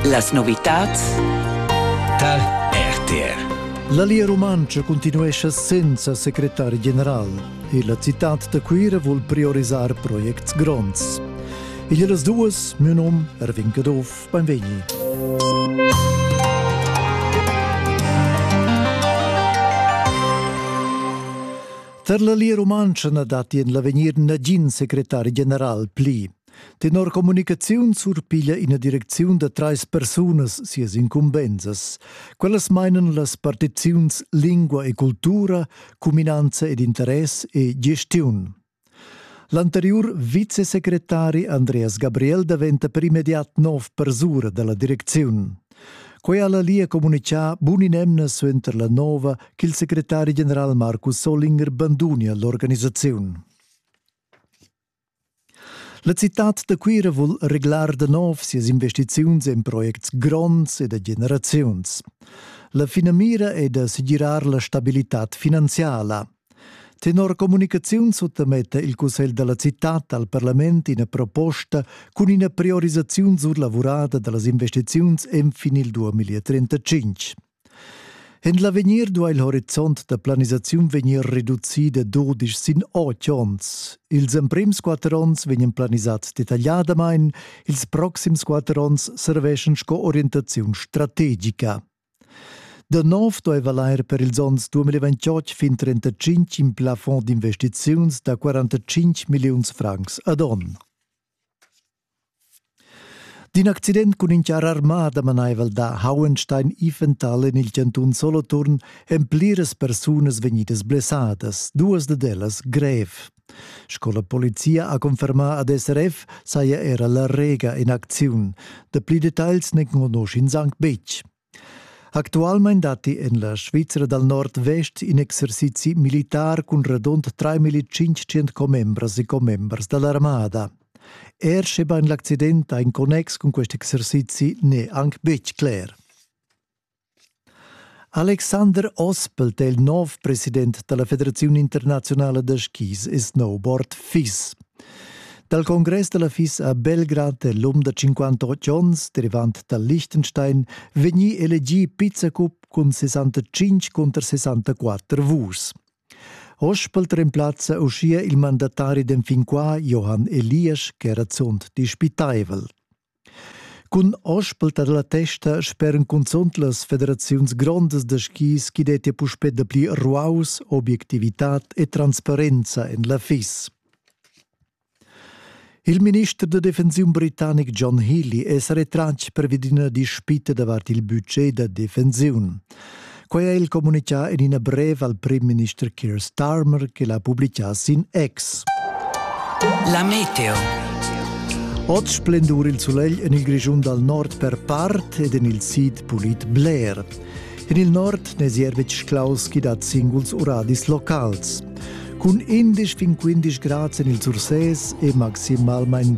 Las novitads tar RTR. La Lia Rumantscha continuescha senza secretar general e la citad da Cuira vul priorisar projects gronds. Igl las duas, mio nom Erwin Caduff, benvegni. Tar la Lia Rumantscha na datti en l'avegnir nagin secretar general pli. Tenor communicaziun surpiglia ina direcziun da trais persunas sias incumbensas. Quellas mainan las partiziuns lingua e cultura, cuminanza ed interess e gestiun. L'anteriur vicesecretari Andreas Gabriel daventa per immediat nov persura dalla direcziun. Quei ha la Lia comunicà bun in'emna suenter la nova ch'il secretari general Marcus Solinger banduni all'organisaziun. La citad da Cuira vul reglar da nov sias investiziuns en projects gronds e da generaziuns. La finamira è da segirar la stabilitad finanziala. Tenor communicaziun suttametta il cussegl della cittad al parlament ina proposta cun ina priorisaziun surlavurada dallas investiziuns enfin il 2035. En l'avegnir duai il horizont da planisaziun vegnir reducì da dudisch sin otg onns. Ils emprims quatter onns vegnan planisads detagliadamain, ils proxims quatter onns serveschan sco orientaziun strategica. Da nov duai valair per ils onns 2028 fin 35 in plafond d'investiziuns da 45 milliuns francs ad onn. D'in accident cun in charr armà damanaivel da Hauenstein Iffental en il chantun Soloturn èn pliras persunas vegnidas blessadas, duas dad ellas grev. Sco la polizia ha confermà ad SRF saja era la Rega in acziun. Dapli detagls n'enconusch'ins anc betg. Actualmein datti en la Svizra dal Nordvest in exercizi militar cun radund 3500 commembras e commembers da l'armada. Er schebain l'accident ha in connex cun quest exercizi n'è anc betg cler. Alexander Ospelt è il nov president da la Federaziun internaziunala da skis e snowboard FIS. Dal congress da la FIS a Belgrad è l'um da 58 onns, derivant dal Liechtenstein, vegnì elegì pizzacup cun 65 cunter 64 vurs. Ospelt remplazza uschia il mandatari d'enfin qua Johann Eliasch, ch'era zunt dispitaivel. Cun ospeltar la testa speran cunzunt las federaziuns grondas da skis ch'i dettia puspè dapli ruaus, obiectivitad e transparenza en la FIS. Il minister da defensiun britannic John Healy è sa retratg per ina dispita davart il budget da defensiun. Quei ha il communicà en ina brev al primminister Keir Starmer che l'ha publicà sin X. La meteo. Oz splendur il sulegl en il Grischun dal nord per part ed en il sid pulit bler. En il nord n'è Zierwitsch Klaus chi dat singuls uradis locals. Cun 11 fin 15 grads en il Surses e maximalmain